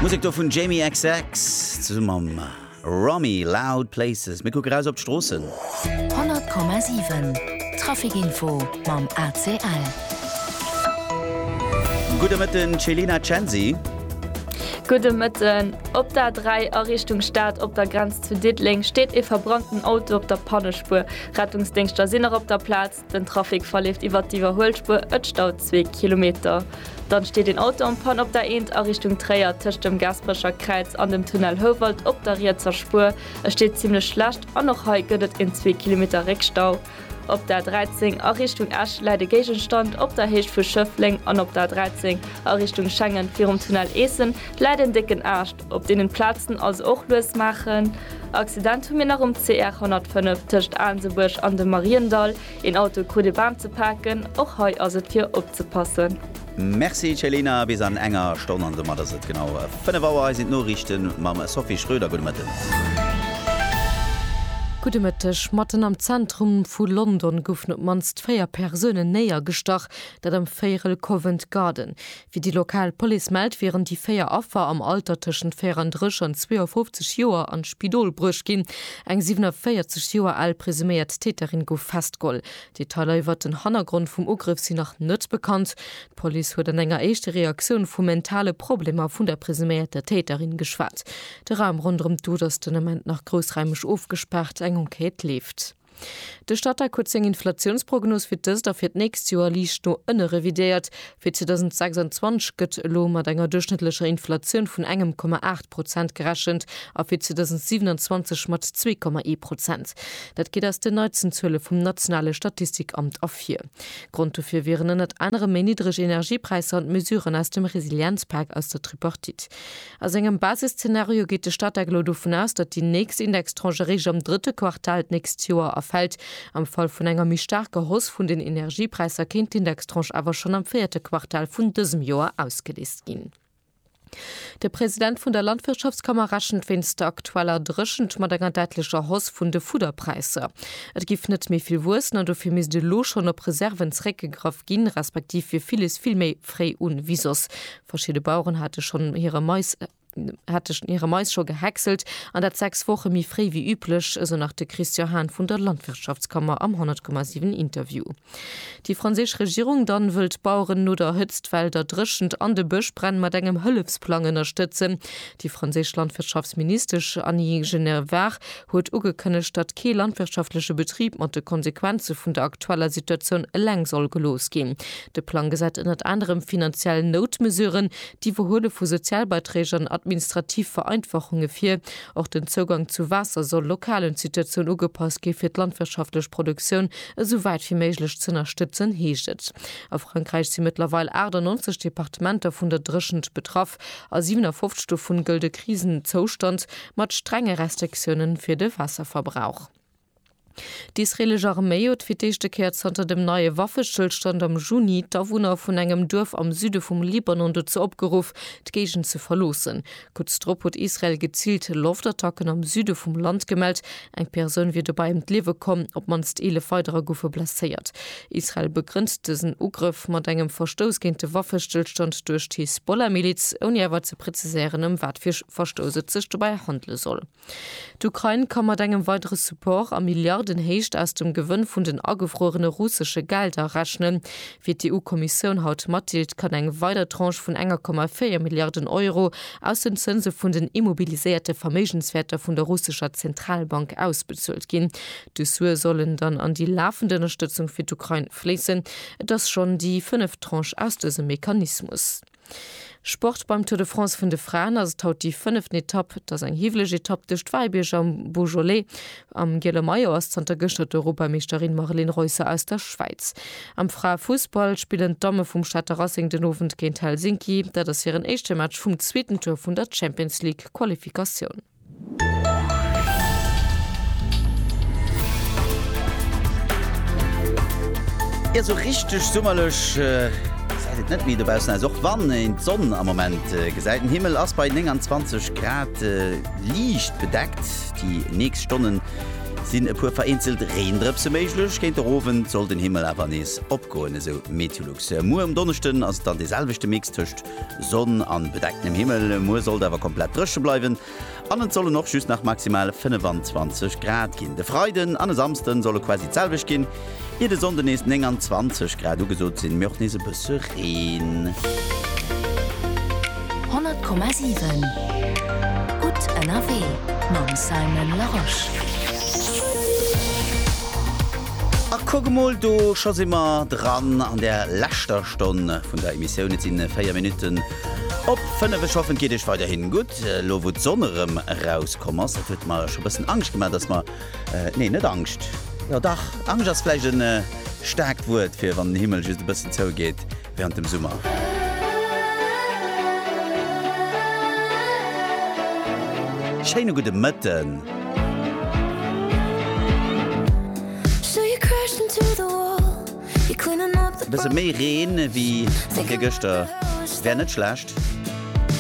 Musek do vun Jamie xx zesumm mam Romy Loud Places. Mir kucke raus op d'Stroossen. 100,7 Traficinfo mam ACL. Gudde Mëtten Céline a Censi. Gudde Mëtten. Op der 3 a Richtung Stad op der Grenz zu Diddeleng steet ee verbrannten Auto op der Pannespuer. Rettungsdéngschter sinn nach op der Plaz. Den Trafic verleeft iwwert d'Iwwerhuelspuer, et staut zwee Kilometer. Dann steet een Auto am Pann op der Eent a Richtung Tréier tëscht dem Gaasperecher Kräiz an dem Tunnel Houwald op der rietser Spuer. Et steet zimmlech schlecht an och hei gëtt et een zwee Kilometer Réckstau. Op der 13 a Richtung Esch läit e Géigenstand op der Héicht vu Schëffleng an op der 13 a Richtung Schengen virum Tunnel Eessen läit een décken Aascht. Op deenen Platzen also och lues maachen. Accident hu mir nach um CR 105 tëscht Aansebuerg an dem Mariendall. Een Auto krut e Baam ze paken, och hei ass et fir opzepassen. Merci Céline, a bis an enger Stonn an domat ass et genau 5 Auer. Hei sinn d'Noriichten mam Sophie Schröder. Gudde Mëtten. Gudde Mëtteg. Matten am Zentrum vu London goufen op d'mannst véier Persoune néiergestach, dat am Véierel Covent Garden. Wéi déi lokal Police mellt, wieren déi véier Affer am Alter tëschent 34 an 52 Joer an d'Spidol bruecht ginn. Eng 47 Joer al presuméiert Täterin gouf festgeholl. Detailer iwwert den Hannergrond vum Ugrëff sinn nach net bekannt. D'Police huet an enger éischte Reaktioun vu mentale Problemer vun der presuméierter Täterin geschwat. De Raum ronderëm d'Dot ass den Ament nach groussraimeg ofgespaart, eng Enquête leeft. De Statec huet seng Inflatiounsprognos fir d'ëst a fir d'nächst Joer liicht no ënne revidéiert. Fir 2026 gëtt elo mat enger duerchschnëttlecher Inflatioun vun engem Komma aacht Prozent gerechent a fir 2027 mat zwee Komma ee Prozent. Dat geet aus den neitsten Zuele vum nationale Statistikamt ervir. Grond dofir wieren ënnert anerem méi niddreg Energiepräisser an d'Mesuren aus dem Resilienzpak aus der Tripartite. A sengem Basisszenario geet de Statec elo dovun aus, datt déi nächst Indextranche eréischt am drëtte Quartal d'nächst Joer erfält. Am Fall vun enger méi staarker Hausse vun den Energiepräisser kéint d'Indextranche awer schonn am véierte Quartal vun dësem Joer ausgeleest ginn. De President vun der Landwirtschaftskammer rechent wéinst der aktueller Dréchent mat enger däitlecher Hausse vun de Fudderpräisser. Et géif net méi vill wuessen an dofir misst elo schonn op Reserven zréckgegraff ginn, respektiv wier villes vill méi fréi un wéi soss. Verschidde Baueren hate schonn hire Mais hate schonn hire Mais scho gehäckselt, an dat sechs Woche méi fréi wéi üblech, esou nach de Christian Hahn vun der Landwirtschaftskammer am 100,7 Interview. Déi franséisch Regierung dann wëll d'Baueren no der Hëtzt, Well, der Dréchent an de Bëschbränn mat engem Hëllefsplang ënnerstëtzen. Déi franséisch Landwirtschaftsministesch Annie Genevard huet ugekënnegt, datt kee landwirtschaftleche Betrib mat de Konsequenze vun der aktueller Situatioun eleng soll gelooss ginn. De Plang gesäit ënnert anerem finanziell Noutmesuren, d'Iwwerhuele vu Sozialbeiträg an administrativ Vereinfachunge vir. Och den Zougang zu Waasser soll lokalen Situatioun ugepasst gi fir d'landwirtschaftlech Produktioun esou wäit wéi méiglech z'ënnerstëtzen, heescht et. A Frankräich si mëttlerweil 98 Departementer vun der Dréchent betraff. A 57 dovun gëllt e Krisenzoustand. mat strenge Restriktioune fir de Waasserverbrauch. D'israelesch Arméi huet fir d'éischte Kéier zanter dem neie Waffestëllstand am Juni d'Awunner vun engem Duerf am Süde vum Libanon dozou opgeruff, d'Géigend ze verloossen. Kuerz drop huet Israel geziilt Loftattacken am Süde vum Land gemellt, Eng Persoun wier dobäi ëm d'Liewe komm, op d'mannst 11 weiderer goufe blesséiert. Israel begrënnt dësen Ugrëff mat engem Verstouss géint de Waffestëllstand duerch d'Hisbollah-Miliz, ouni awer ze preziséieren, ëm wat fir Verstouss et sech dobäi handele soll. D'Ukrain ka mat engem weidere Support a Milliardenhéicht aus dem Gewënn vun den agefruerene russesche Gelder rechnen, Wéi d'EU-Kommissioun haut matdeelt, kann eng weider Tranche vun 1,4 Milliarden Euro aus den Zënse vun den immobiliséierte Verméigenswäerter vun der russescher Zentralbank ausbezuelt ginn. Dës Sue sollen dann an déi lafend Ënnerstëtzung fir d'Ukrain fléissen. Et ass schonn déi fënneft Tranche aus dësem Mechanismus. Sport, Beim Tour de France vun de Fraen ass et haut déi fënneft Etapp. Et ass eng hiwweleg Etapp duerch d'Wäibierger am Beaujolais. Am giele Maillot ass zanter gëschter d'Europameeschterin Marlene Reusser aus der Schwäiz. Am Fraefussball spillen d'Damme vum Stater Racing den Owend géint Helsinki. Dat ass hiren éischte Match vum zweeten Tour vun der Champions League-Qualifikatioun. Jo sou richteg summerlech säit et net méi dobaussen aus. Och wann een d'Sonn am Moment gesäit. Den Himmel ass bei 29 Grad liicht bedeckt. Déi nächst Stonnen sinn e puer vereenzelt Reendrëpse méiglech. Géint de Owend soll den Himmel awer nees opgoen, esou Meteolux. Muer um Donneschden ass et dann dee selwechte Mix tëscht Sonn an bedecktem Himmel, muer sollt awer komplett drëche bleiwen an et sollen och just nach maximal 25 Grad ginn. De Freiden an e Samsden solle quasi d'selwecht ginn, ier de Sonnde nees 29 Grad ugesot sinn, mee och nees e bësse Reen. 100,7 Gutt ënnerwee mam Simon Larosche. A kuck emol, do scho si mer dran an der leschter Stonn vun der Emissioun. Et sinn 4 Minutten op 5. Ech hoffen, et geet Iech weiderhin gutt, elo wou d'Sonn erëm erauskomm ass. Et huet mer scho bëssen Angscht gemaach, dass mer, nee, net Angscht, jo dach, Angscht ass vläicht e staarkt Wuert fir wann den Himmel just e bëssen zougeet während dem Summer. Schéine gudde Mëtten. Bësse méi Reen ewéi virgëschter wär net schlecht.